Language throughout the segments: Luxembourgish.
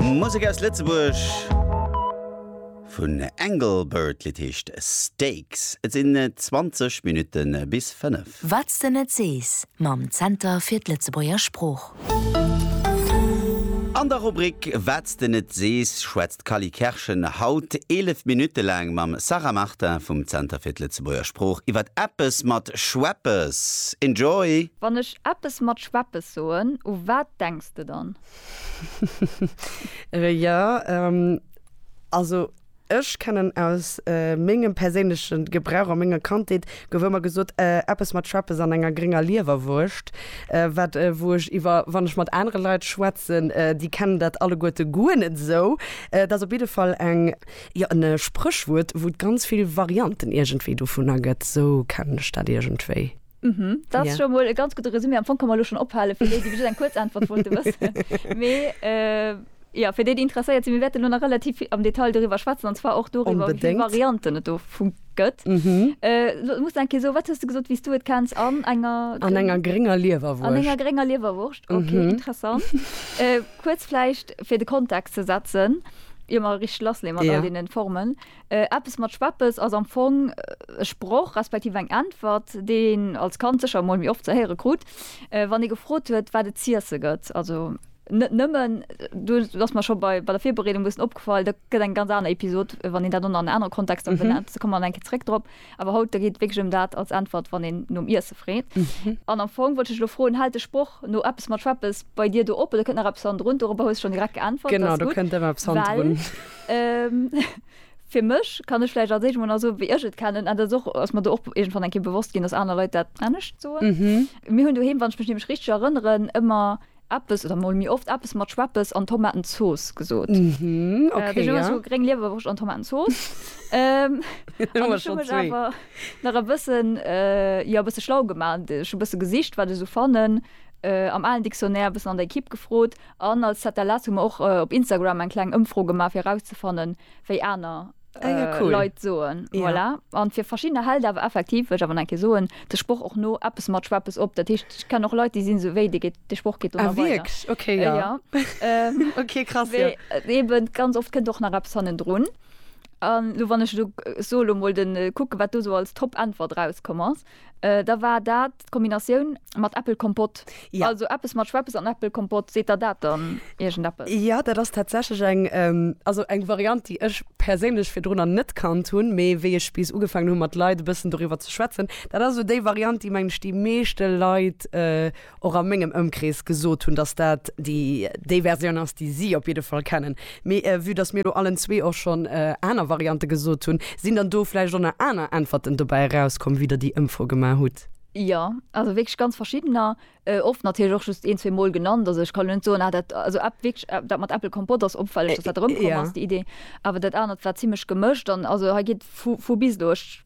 Musek aus Lëtzebuerg vun Engelbert, d'Lidd heescht Stakes. Et sinn 20 Minutte bis 5. Wat s de net sees, mam Zenter fir d'Lëtzebuerger Sprooch. An der Rubrik Wat s de net sees, D'Cally Kerschen haut 11 Minutte laang mam Sarah Martin vum Zenter fir d'Lëtzebuerger Sprooch iwwer eppes mat Schweppes. Enjoy! Wann ech eppes mat Schweppes soen, u wat denks de dann? Jo, also ech kennen aus mengem perséinlechen Gebrauch a menger Kandheet Gouf ëmmer gesot, eppes mat Schweppes an enger grénger Liewerwurscht, wat, wou ech iwwer, wann ech mat anere Leit schwätzen, déi kennen dat alleguerte guer net esou. Dat ass op jidde Fall eng, jo, en Spréchwuert, wou et ganz vill Varianten iergendwéi dovunner gëtt. Esou kennen ech dat iergendwéi. Hm, dat ass scho mol e ganz gudde Resumé. Am Fong ka mer elo schonn ophale, fir déi, déi just eng kuerz Äntwert wollte wëssen. Mee. Jo, fir déi, déi interesséiert sinn, mir wäerten elo nach relativ vill am Detail doriwwer schwätzen, an zwar och doriwwer, wéi vill Varianten et dovu gëtt. Elo muss ech eng Kéier soen, wat hues du gesot, wéi s du et kenns? An enger. An enger grénger Liewerwurscht. An enger grénger Liewerwurscht, ok, interessant. Kuerz vläicht, fir de Kontext ze setzen, ier mer richteg lassleeën mat all deenen Formen. Eppes mat Schweppes ass am Fong e Sproch respektiv eng Äntwert, déi een als Kand sécher emol méi oft ze héiere krut, wann ee gefrot huet, wat et z'iesse gëtt. Also. Net nëmmen, du ass mer scho bei der Virbereedung e bëssen opgefall, dat gëtt eng ganz aner Episod, wann een dat an en anere Kontext dann benennt, da komme mer nach eng Kéier zréck drop. Awer haut, da geet et wierklech ëm dat als Äntwert, wann een nom Iesse freet. An am Fong wollt ech dech elo froen, hält de Sproch no eppes mat schweppes bei dir do op oder kënnt nach eppes hannendrun? Dorobber hues de schonn direkt geäntwert, dat ass gutt, well fir mech, kann ech vläicht als éischt emol nach soen, wéi ech et kennen, an dat ass och, ass mer do och iergendwann eng Kéier bewosst ginn, dass aner Leit dat anescht soen. Mir hunn doheem, wann ech mech nämlech richteg erënneren, ëmmer eppes oder mol méi oft eppes mat Schweppes an Tomatenzooss gesot. Mhm, okay, äh, ja. so gréng Liewerwurscht an Tomatenzooss. ähm, an ech hu mech awer nach e bëssen äh, ja, e bësse schlau gemacht. Ech hu bësse gesicht, wat ech so fannen. Äh, am allen Dictionnaire bëssen an der Ekipp gefrot an als ZLS hu mer och äh, op Instagram eng kleng Ëmfro gemaach, fir rauszefannen, wéi aner Ah ja, cool. Leit soen. Ja. Voilà. An fir verschiedene Held awer effektiv, wëll ech awer nach eng Kéier soen, de Sproch och no eppes mat Schweppes op. Dat heescht, ech kennen och Leit, déi sinn esou, wéi, dee geet, de Sproch geet do Ah, nach weider. wierklech? Okay, ja. Ja. Ähm, Okay, krass, ja. wéi, äh, eben ganz oft kënnt och nach eppes hannendrun. An lo, wann ech lo, äh, so lo mol den, äh, kucken, wat do sou als Top-Äntwert rauskomm ass, äh, da war dat, D'Kombinatioun mat Äppelkompott, also eppes mat Schweppes an Äppelkompott, seet der dat dann iergendeppes? Jo, dat ass tatsächlech eng, also eng Variant, déi ech perséinlech virdrunner net kannt hunn, mee wéi ech bis ugefaangen hunn, mat Leit e bëssen doriwwer ze schwätzen, dat ass esou déi Variant, déi, mengen ech, déi meeschte Leit och a mengem Ëmkrees gesot hunn, dass dat déi Versioun ass, déi si op jidde Fall kennen. Mee vue dass mir elo allen zwee och schonn aner Variante gesot hunn, sinn dann do vläicht och nach aner Äntwerten dobäi erauskomm, wéi der déi Ëmfro gemaach hutt? Jo, also wierklech ganz verschiddener. Oft natierlech och just een, zwee Mol genannt. Also ech kann elo net soen, ah dat, also Äpp, wierklech dat mat Äppel Kompott ass opfälleg, dass dat erëmkomm ass, déi Idee. Awer dat anert war zimlech gemëscht. An also hei geet vu bis elo. Ech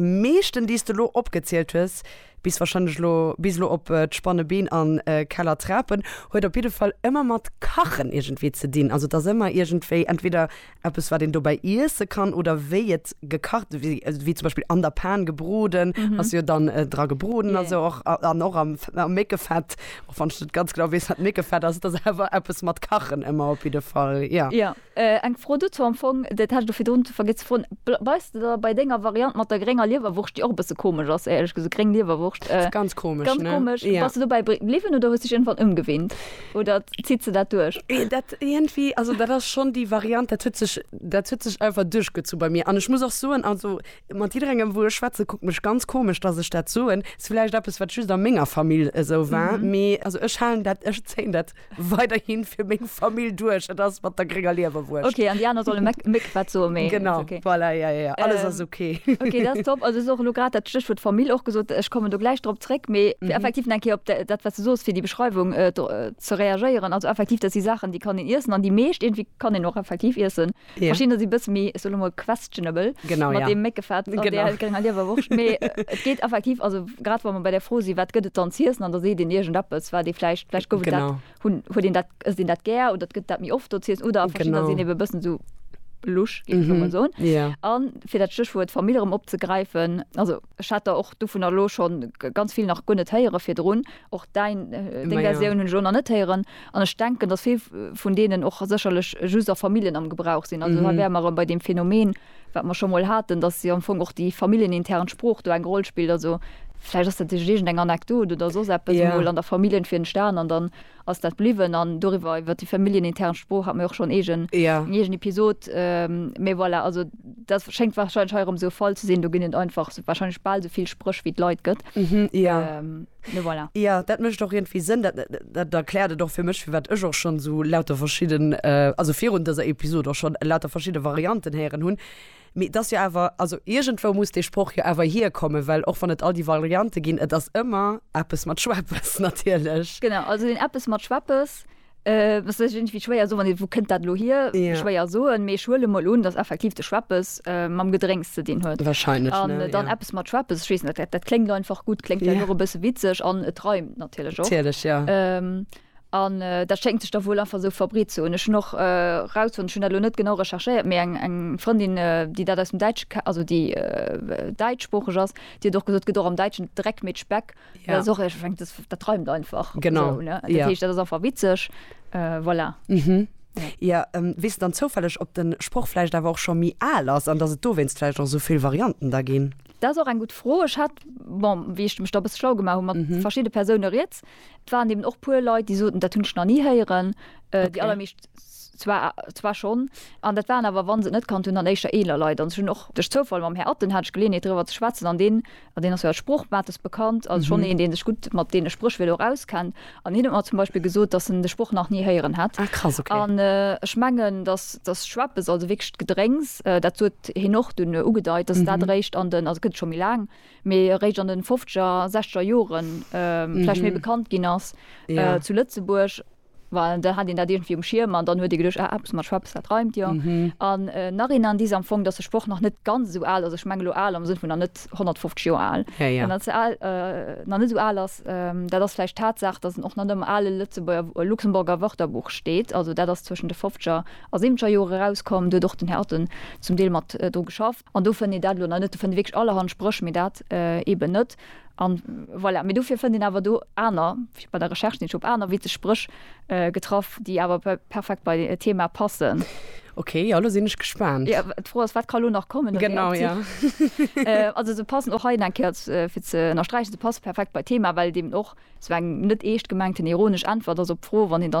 meeschten déi s de lo opgezielt hues, bis wahrscheinlech lo bis lo op d'spanne Been an Keller Trapen, huet op jidde Fall ëmmer mat kachen iergendwéi ze dinn. Also et ass ëmmer iergendwéi entweder eppes wat een dobäi iesse kann oder wéi et gekacht wéi wéi zum Beispill an der Pan gebroden ass jo dann dra gebroden a sou och an och am Méckefett, och wann ech net ganz genau weess wat Méckefett ass, et ass awer eppes mat kachen ëmmer op jidde Fall, jo. Eng Fro dozou, am Fong, dat hat ech do virdrun vergiess ze froen, bleiws de da bei denger Variant mat der grénger Liewerwurscht, déi och e bësse komesch ass, éierlech gesot, gréng Liewerwurscht, ganz komesch, bass de dobäi bliwwen oder hues dech iergendwann ëmgewinnt oder zitt se dat duerch? Dat iergendwéi, also dat ass schonn déi Variant, dat huet sech, dat huet sech einfach duerchgezu bei mir an ech muss och soen, also mat jidderengem, wou ech schwätze, kuckt mech ganz komesch, datt ech dat soen. Ass villäicht eppes, wat just a menger Famill esou war, mee also ech halen dat, ech zéien dat weiderhin fir meng Famill duerch. Et ass mat der grénger Liewerwurscht. Okay, an déi aner solle Méck, Méck wat soen, mee. Genau, okay. Voilà, ja, ja, ja. Alles ähm, ass okay. okay, dat ass top. Also, so lo grad dat Stéchwuert Famill och gesot. Ech kommen do gläich drop zréck, mee mhm. effektiv eng Kéier op dat, wat du soos, fir déi Beschreiwung äh, äh, ze reagéieren. Also, effektiv, dat si Saachen, déi kann een iessen, an déi meescht irgendwie kann een och effektiv iessen. Yeah. Verschieden ass e bësse méi ech soll lo mol questionable genau, mat ja. deem Méckefett an genau. der grénger Liewerwurscht. Mee äh, et geet effektiv, also grad wann man bei der Fro si wat gëtt et dann ziessen an der seet den irgend eppes, war dee vläicht vläicht gouf dat hunn huet den dat ass den dat gär oder gëtt dat méi oft do ziessen oder verschiedene sinn ebe bëssen so lusch mm -hmm. so yeah. an fir dat Stichwuert Familierem opzegreifen also Ech hat der och dovunner elo scho ganz vill nach guer net héiere virdrun. Och däin, deng Versioun hunn ech elo nach net héieren. An ech denken, datt vill vun deenen och sécherlech just a Familljen am Gebrauch sinn. Also hei wäre mer erëm bei deem Phänomen, wat mer scho mol haten, datt jo am Fong och déi familljenintern Sprooch do eng Roll spillt. Also vläicht ass dat iergendeng Anekdot oder soss eppes emol an der Familljen fir entstanen an dann. ass dat bliwwen an doriwwer iwwert déi familljenintern Sprooch hat mer jo och schonn eegen Jo. eng eegen Episod, mee voilà, also dat schéngt wahrscheinlech hei erëm esou e Fall ze sinn, do ginn et einfach esou wahrscheinlech bal esou vill Spréch wéi et Leit gëtt, Jo. mee voilà. Jo, dat mécht och iergendwéi Sënn. Dat dat erkläert et och fir mech, firwat ech och schonn esou lauter verschidden, also virun dëser Episod och schonn lauter verschidde Varianten héieren hunn. Mee et ass jo awer, also iergendwou muss dee Sproch jo awer hierkommen, well och wann et all déi Variante ginn, et ass ëmmer eppes mat Schweppes natierlech. Genau, also deen eppes mat Schweppes, et ass iergendwéi schwéier soen, well wou kënnt dat elo hier? Schwéier soen, mee ech huele mol un, datt effektiv de Schweppes mam Gedrénks ze dinn huet. Wahrscheinlech, ne? An dann eppes mat Schweppes, ech weess net, dat kléngt einfach gutt, kléngt vläicht och e bësse witzeg an et reimt natierlech och. Natierlech, jo. An dat schéngt sech da wuel einfach esou verbreet ze hunn. Ech hunn och erausfonnt, ech hunn dat elo net genau recherchéiert, mee eng Frëndin, déi dat aus dem Däitsche ke-, also déi däitschsproocheg ass, déi huet och gesot, et gëtt och am Däitschen Dreck mee d'Speck. Dat ass och, ech mengen, dass, dat reimt einfach esou, ne? Dat heescht, dat ass einfach witzeg. Voilà. Jo, weess de dann zoufälleg, ob de Sproch vläicht awer och scho méi al ass an dass et dowéinst vläicht och esou vill Varianten da ginn? Dat ass och eng gutt Fro. Ech hat, bon, wéi ech mech da e bësse schlau gemaach hu mat verschidde Persoune riets, Et waren eben och puer Leit, déi soten, dat hunn ech nach ni héieren. Déi allermeescht zwar schonn, an dat waren awer, wa se et net kannt hunn, dann éischter eeler Leit. An ech hunn och duerch Zoufall mam Här Atten hat ech Geleeënheet driwwer ze schwätzen, an deen ass jo als Sprochmates bekannt, also schonn een, dee sech gutt mat deene Spréch wéiler och auskennt. An hien huet mer zum Beispill gesot, datt en de Sproch nach ni héieren hätt. An ech mengen, datt datt Schweppes, also wierklech d'Gedrénks, dat huet hien och dunn ugedeit, datt dat eréischt an den, also gëtt et scho méi laang, mee eréischt an den fofzeger, sechzeger Joren vläicht méi bekannt ginn ass zu Lëtzebuerg, well da hat een dat iergendwéi um Schierm an dann huet ee geduecht, ah, eppes mat Schweppes, dat reimt jo. An Nachhinein dis am Fong, datt de Sproch nach net ganz esou al ass, ech mengen elo al am Sënn vun nach net 150 Joer al, nach net esou al ass, dat ass vläicht d'Tatsaach, datt en och net am ale Lëtzebuerger, Luxemburger Wörterbuch steet, also dat ass zwëschen de fofzeger a siwwenzeger Jore erauskomm, do huet och den Här Otten zum Deel mat dru geschafft. An do fënnt een dat elo nach net. Do fënnt ee wierklech allerhand Spréch, mee dat eeben net. A voilà. Mee dofir fënnt een awer do aner, bei der Recherche sinn ech op aner witzeg Spréch getraff, déi awer perfekt bei e Thema passen. Ok, jo, elo sinn ech gespaant. Jo, d'Fro ass, wat ka lo nach kommen? Genau, jo. Also se passen och hei nach eng Kéier, fir ze ënnersträichen, se passe perfekt bei d'Thema, well et eeben och esou eng net eescht gemengten ironesch Äntwert ass op d'Fro, wann een dann.